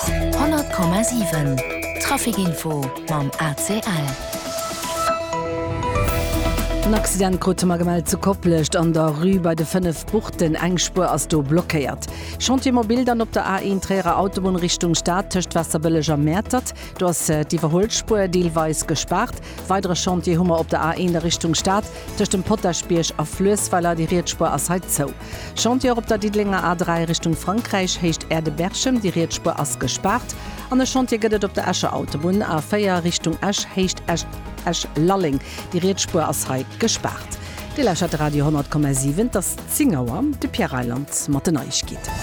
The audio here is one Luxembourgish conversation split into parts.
100,7 Trafic Info mam ACL. En Accident krute mer gemellt zu Koplescht an der Rue bei de 5 Buchten. Eng Spuer ass do blockéiert. Chantier mobil dann op der A1 Tréierer Autobunn Richtung Stad tëscht Waasserbëlleg a Mäertert. Do ass d'Iwwerhuelspuer deelweis gespaart. Weidere Chantier hu mer op der A1 a Richtung Stad tëscht dem Potaschbierg a Fluessweiler. Déi riets Spuer ass hei zou. Chantier op der Diddelenger A3 Richtung Frankräich, Héicht Aerde-Berchem, déi riets Spuer ass gespaart, an e Chantier gëtt et op der Escher Autobunn, A4 Richtung Esch, Héicht Esch-Lalleng, déi riets Spuer ass hei gespaart. Dir lauschert de Radio 10,7, et ass 10 Auer, de Pierre Reyland mat den Neiegkeeten.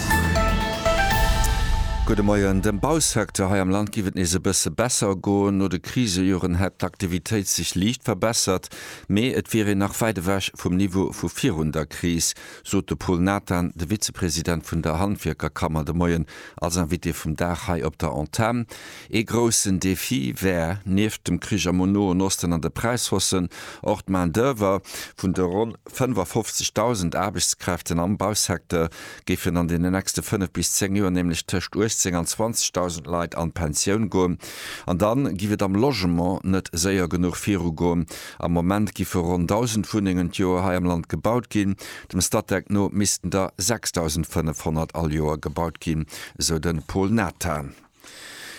Gudde Moien, Dem Bausecteur hei am Land giff et nees e bësse besser goen. No de Krisejoren hätt d'Aktivitéit sech liicht verbessert, Mee et wier een nach wäit ewech vum Niveau vu virun der Kris, sot de Pol Nathan, de Vizepresident vun der Handwierkerkammer de Moien als Invité vum Dag hei op der Antenn. Ee groussen Defi wär, nieft dem Krich am Noen Osten an de Präishaussen, och d'Main-d'oeuvre. Vun de ronn 55.000 Aarbechtskräften am Bausecteur géifen an den nächste 5 bis 10 Joer nämlech tëscht 18 an 20.000 Leit an d'Pensioun goen. An da giff et am Logement net séier genuch virugoen. Am Moment giffe ronn 1.000 Wunnengen d'Joer hei am Land gebaut ginn. Dem Statec no missten der 6.500 all Joer gebaut ginn, sou de Paul Nathan.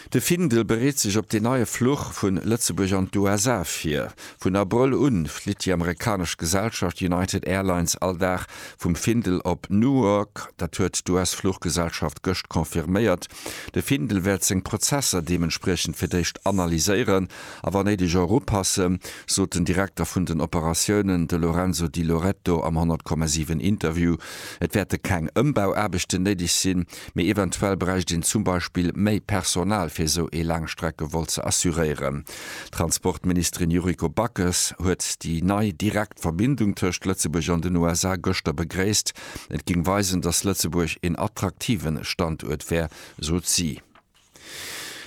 De Findel bereet sech op deen neie Fluch vu Lëtzebuerg an d'USA vir. Vun Abrëll u flitt déi amerikanesch Gesellschaft United Airlines all Dag vum Findel op Newark. Dat huet d'US-Fluchgesellschaft gëscht confirméiert. De Findel wäert seng Prozesser deementspriechend fir d'éischt analyséieren a wa néideg och upassen, sot den Direkter vun den Operatiounen, de Lorenzo Di Loreto am 100,7 Interview. Et wäerte keng Ëmbauaarbechten néideg sinn. Mee eventuell bräicht een zum Beispill méi Personal fir esou ee Laangstreckevol ze assuréieren. D'Transportministerin Yuriko Backes huet déi nei direkt Verbindung tëscht Lëtzebuerg an den USA gëschter begréisst. Et géing weisen, datt Lëtzebuerg een attraktiven Standuert wär, sot si.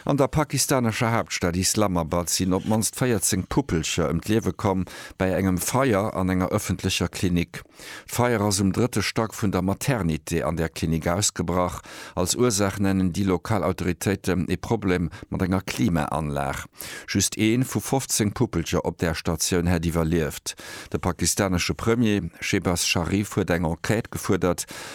An der pakistanescher Haaptstad Islamabad sinn op d'mannst 14 Puppelcher ëm d'Liewe komm bei engem Feier an enger ëffentlecher Klinik. D'Feier ass um drëtte Stack vun der Maternité an där Klinik ausgebrach. Als Ursaach nennen déi lokal Autoritéiten ee Problem mat enger Klimaanlag. Just ee vu 15 Puppelcher op där Statioun hätt iwwerlieft. De pakistanesche Premier Shehbaz Sharif huet eng Enquête gefuerdert,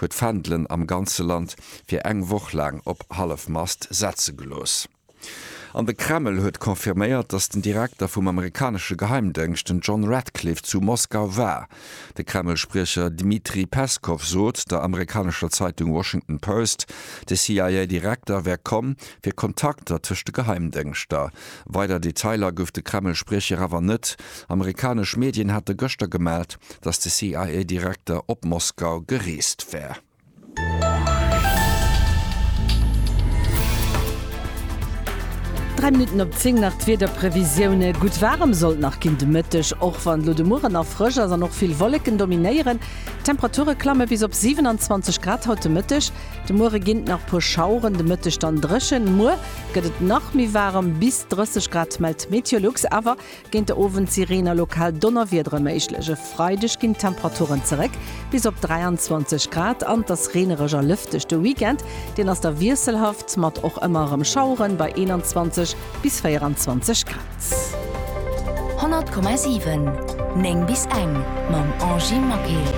huet d'Fändelen am ganze Land fir eng Woch laang op Hallefmast setze gelooss. An de Kreml huet confirméiert, datt den Direkter vum amerikanesche Geheimdëngscht, den John Ratcliffe, zu Moskau war. De Kreml-Spriecher Dmitri Peskow sot der amerikanescher Zeitung Washington Post, de CIA-Direkter wär komm, fir Kontakter tëscht de Geheimdëngschter. Weider Detailer gouf de Kreml-Spriecher awer net. Amerikanesch Medien hate gëschter gemellt, datt de CIA-Direkter op Moskau gereest wär. Dräi Minutten op zéng nach d'Wiederprevisioune. Gutt waarem sollt nach ginn de Mëtteg, och wann elo de Mueren nach frësch ass an och vill Wolleken dominéieren. D'Temperature klamme bis op 27 Grad haut de Mëtteg. De Muere ginn et nach puer Schaueren, de Mëtteg dann dréchen. Muer gëtt et nach méi waarem, bis 30 Grad mellt Meteolux. Awer Géint de Owend si Reen a lokal Donnerwiedere méiglech. E Freideg ginn d'Temperaturen zeréck bis op 23 Grad an et ass reenereg a lëfteg. De Weekend, deen ass da wiesselhaft, mat och ëmmer erëm Schaueren bei 21 bis 24 Grad. 100,7 9 bis eng mam Angy Maquet.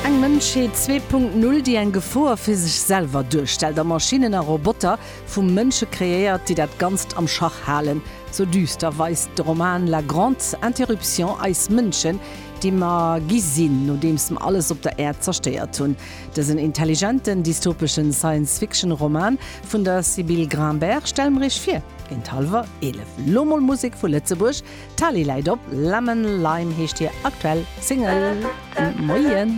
Eng Mënschheet 2.0, déi eng Gefor fir sech selwer duerstellt a Maschinnen a Roboter, Vu Mënsche kreéiert, déi dat Ganzt am Schach halen, sou düster weist de Roman La grande interruption eis Mënschen, déi mer gi sinn, nodeems mer alles op der Äerd zerstéiert hunn. Dësen intelligenten, dystopeschen Science-Fiction-Roman vun der Sybille Grinbert stelle mer iech vir géint hallwer 11. Lo mol Musek vu Lëtzebuerg, Tali läit op, Lemon Lime heescht hir aktuell Single. Moien!